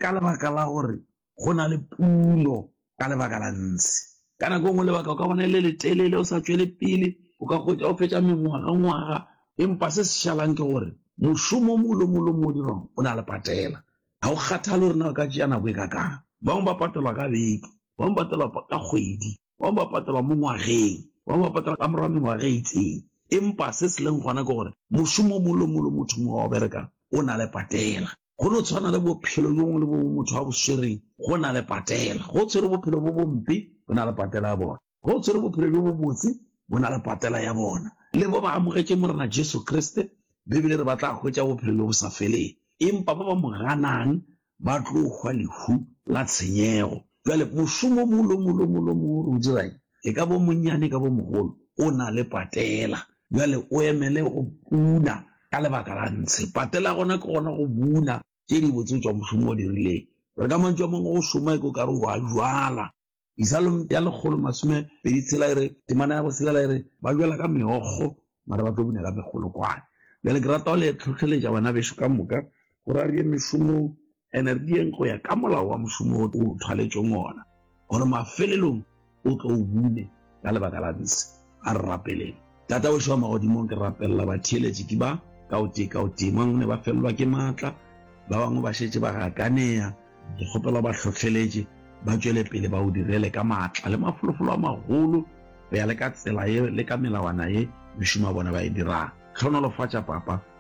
ka lebaka la gore go na le pulo ka lebaka la ntshe ka nako e nngwe lebaka o ka bona e le letelele o sa tswele pele o ka kgotsa o fetsa mengwaga ngwaga empa se se šalang ke gore mošomo o mongwe le mongwe le mongwe o dirwang o na le patela ga o kgathale gore na o ka tšea nako e ka kang bangwe ba patelwa ka beke bangwe ba patelwa ka kgwedi bangwe ba patelwa mo ngwageng bangwe ba patelwa ka morwa mengwaga e itseng empa se se leng gona ke gore mošomo o mongwe le mongwe le motho mongwe wa o berekang o na le patela Go no tshwana le bophelo le bongwe le bongwe motho a bo swereng, go na le patela. Go tshwere bophelo bo bompe, go na le patela ya bona. Go tshwere bophelo bo bobotse, bo na le patela ya bona. Le bo ba amogetšeng Morena Jesu Kriste, Bibele re ba tla hwetša bophelo le bo sa feleng. Empa ba ba mo ganang ba tlo hwa lehu la tshenyego. Bjale mošomo mo lo mo lo mo lo mo o dirang, e ka bo monnyane e ka bo mogolo, o na le patela. Bjale o emele go buna ka lebaka la ntshe. Patela gona ke gona go buna tše di botse tšwa mošomo o dirileng. Re ka mantšu a mangwe go šoma eko kare o a jwala. Isalom ya lekgolo masome pedi tshela e re, Temana ya boselela e re, Ba jwala ka meokgo, mara ba tlo buna ka megolokwane. Bjale ke rata go le tlhohleletša banabeso ka moka, Go ra re ye mešomong, ene re diyeng go ya ka molao wa mošomo wo o thwaletšweng wona, gore mafelelong o tlo o bune ka lebaka la bese. A re rapeleng. Tata wešo wa magodimong, ke rapelela batheeletši ke ba, ka o tee ka o tee. Mang ne ba felelwa ke matla, ba bangwe ba šetše ba gakaneya. Ke kgopela o ba hlohleletše ba tšwele pele ba o direle ka matla le mafolofolo a magolo, go ya le ka tsela ye le ka melawana ye mešomo ya bona ba e dirang. Hlohonolofatša, Papa.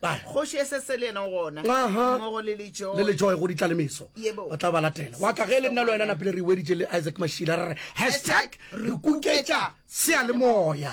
Kgoši e se se le yena gona, mmogo le Lejoe. Le Lejoe go ditlalemeso. Yebo. Ba tla ba latela. Wa ka ge le nna le wena napile re weditše le Isaac Mashila re re hashtag re kuketša seyalemoya.